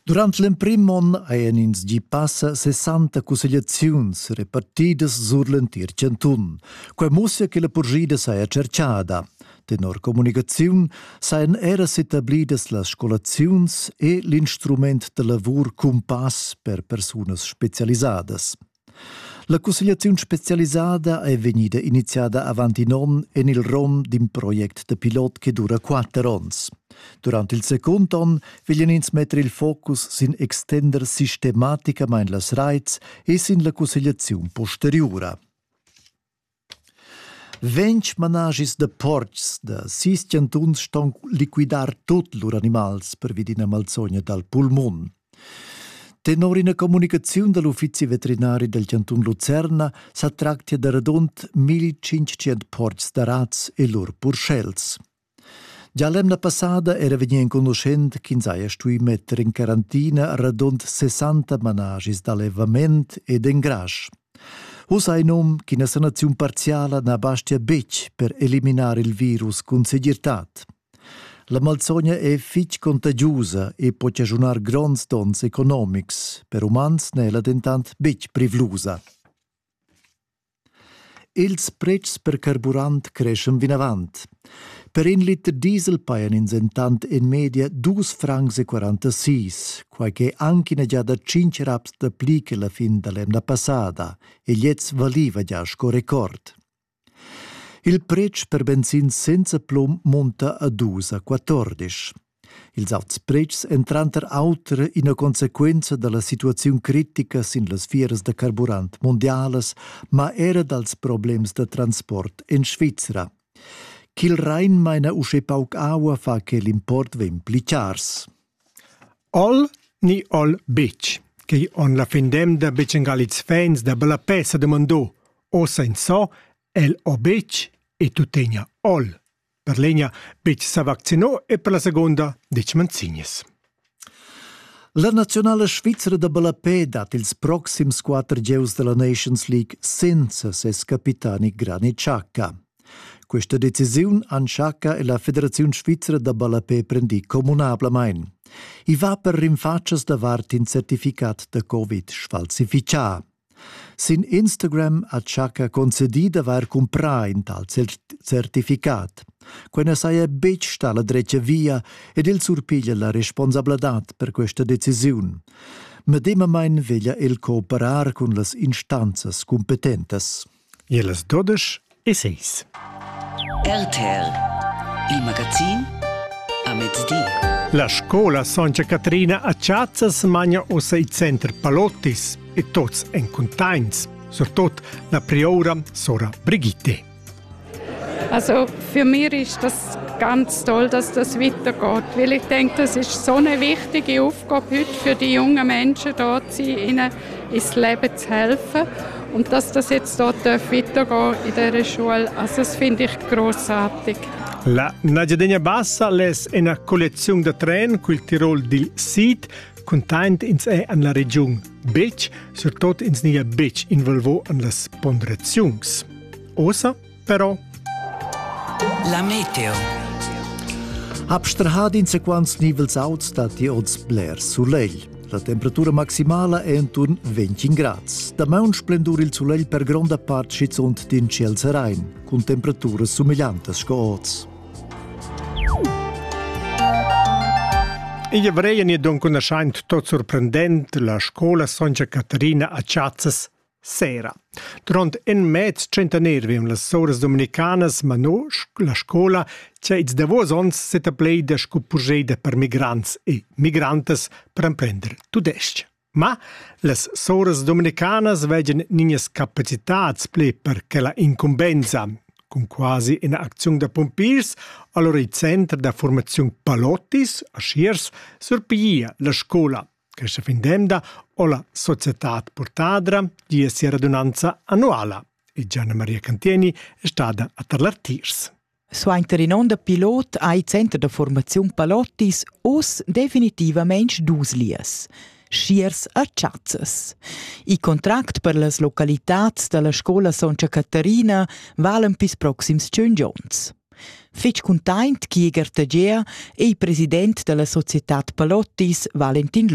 Durant l'emprim onn hajan ins gì passa 60 cussegliaziuns repartidas sur l'entir chantun. Quai mussia che la purschida saja tscherchada. Tenor communicaziun sajan era s'etablidas las scolaziuns e l'instrument da lavur cumpass per persunas spezialisadas. La cussegliaziun spezialisada è vegnida iniziada avant in onn en il rom d'in project da pilot che dura quatter onns. Durant il secund onn veglian ins metter il focus sin extender sistematicamain las raits e sin la cussegliaziun posteriura. Ventg manaschis da portgs da sis chantuns ston liquidar tut lur animals pervi d'ina malsogna dal pulmun. Tenor ina communicaziun da l'uffizi veterinari dal chantun Lucerna sa tractia da radund 1500 portgs da razs e lur purschels. Gia l'emna passada era vegnì enconuschent ch'ins haja stuì metter in quarantina radund 60 managis d'allevament ed engrasch. Uss hai num ch'ina sanaziun parziala na bastia betg per eliminar il virus cun segirtad. La malsogna è fitg contagiusa e po chaschunar gronds donns economics. Per umans n'è la dentant betg privlusa. Ils pretschs per carburant creschan vinavant. Per in liter diesel pajan ins entant en media dus francs e quarantasis, quai ch'è anc ina giada tschintg raps dapli che la fin da l'emna passada, e gliez valiva gia sco record. Il pretsch per benzin senza plum munta a dus a quatordisch. Ils auts pretschs èn tranter auter ina consequenza da la situaziun critica sin las fieras da carburant mundialas, ma era dals problems da transport en Svizra. Ch'il Rhein maina uschè pauc aua fa che l'import vegn pli chars. All ni all bitch, quei on la findem da Becengaliz fans da Bellapè sa demandò, ossa in so, el o bitch e tuttegna all. per l'egna betg sa vaccinar e per la segunda detg manzignas. La naziunala svizra da ballapè dat ils proxims quatter gieus della Nations League senza ses capitani Granit Xhaka. Questa decisiun han Xhaka e la Federaziun Svizra da ballapè prendì communablamain. I va per rinfatschas davart in certificat da Covid sfalsificà. Sin Instagram ha Chaka concedì d'avair cumprà in tal certificat. Quai na saja betg stà la dretga via ed el surpiglia la responsabladad per questa decisiun. Medemamain veglia el cooperar cun las instanzas cumpetentas. Ie las dudesch e seis. RTL Il magazin a mezdi. La scola Santa Catrina a Chazzas magna ossa il center Palottis e tots en contains, surtot la prioura Sora Brigitte. Also für mich ist das ganz toll, dass das weitergeht, weil ich denke, das ist so eine wichtige Aufgabe heute für die jungen Menschen, dort zu sein, ihnen ins leben zu helfen. Und dass das jetzt dort weitergehen in dieser Schule, also das finde ich großartig. La Najadenia Bassa les è una collezione da tren col Tirol dil Sid, content ins è an la regiun Bitsch, surtot ins nia Bitsch involvo an las ponderaziuns. Osa però. La meteo. Abstrahad in sequans nivels auts dat i oz bler sulegl. La temperatura maximala è enturn 20 grads. Damaun splendur il sulegl per gronda part schizunt din ciel serain, cun temperaturas sumigliantas sco oz. Igl vreien e dunque naschaint tot surprendent la scola Sonja Caterina a Chazzas Sera. Durant in mez tschentaner vegn las soras dominicanas mano la scola che ils davos onns setaplei da sco purscheda per migrants e migrantas per emprender tudestg. Ma las soras dominicanas vegien niñas capacitads ple per che la incumbensa, cun quasi ina acziun da pompiers, allora il center da formazione Palottis a Schiers surpiglia la scola Questa fin d'emda ho la societad Portadra gia sia radunanza annuala e Gianna Maria Cantieni è stada a Tarlartiers. Suenter in onn da pilot ha il Center da formaziun Palottis oz definitivament dus lias schiers a Chazzas. Il contract per las localitads da la scola Sontga Caterina valen pis proxims tschun onns. Fitg cuntaint chi Gertagea e il president da la societad Palottis Valentin Lutz.